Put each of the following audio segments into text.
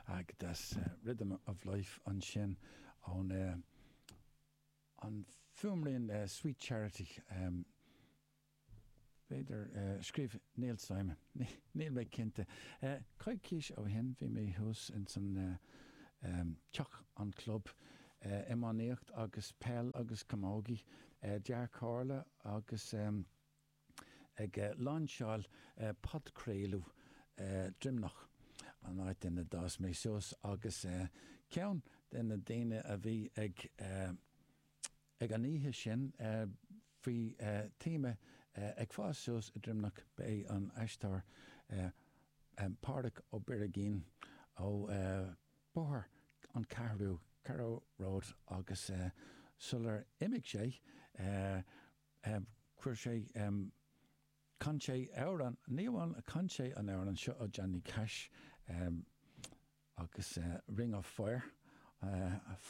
Agus Rhythm of Life ansin ón an fuaimrian Sweet Charity, b'fhéidir, scríobh Neil Simon, níl mé cinnte. Coicís ó shin bhí mé thuas ins an teach an club, iománaíocht agus peil agus camógaí, Dea-Chomhairle agus. ag lainseáil podchraoladh Droimneach, an áit ina d'fhás mé suas, agus ceann de na daoine a bhí ag an oíche sin faoi théama ag fás suas i nDroimneach, ba é an aisteoir Pádraig Ó Birigín ó Bóthar an Cheathrú, Carrow Road, agus sular imigh sé, Chuir sé, chan sé amhrán, ní amháin chan sé an amhrán seo ó Johnny Cash agus Ring of Fire,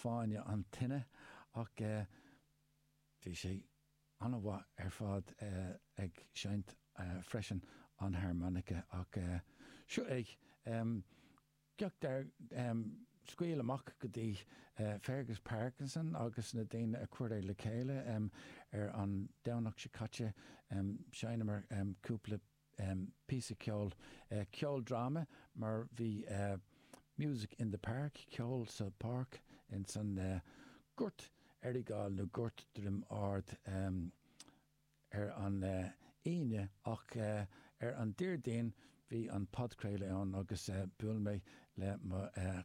Fáinne na Tine, ach bhí sé an-mhaith ar fad ag seinnt freisin an harmonica ach seo é. Cac tairbh, scaoil amach go dtí Fergus Parkinson agus na daoine a chuir é le chéile ar an Domhnach seo caite. Sheinneamar cúpla píosa ceoil, ceoldráma mar bhí Music in the Park, Ceol sa Pháirc, insan Gort Aireagail nó Gort Druim Ard. ar an Aoine ach ar an Déardaoin bhí an podchraoladh ann agus bhuail mé le mo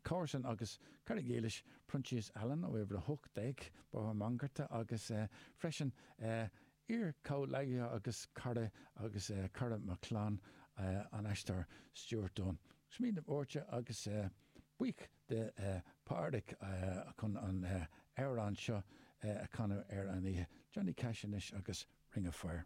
chomharsan agus cara dílis Proinsias Allen ó Uimhir 18 Bóthar Mangarta agus freisin iar-chomhleacaithe agus cara agus cara mo chlann an aisteoir Stuart Dunne. Smaoineamh Báirte agus buíoch de Pádraic chun an amhrán seo a chanadh ar an oíche, Johnny Cash anois agus Ring of Fire.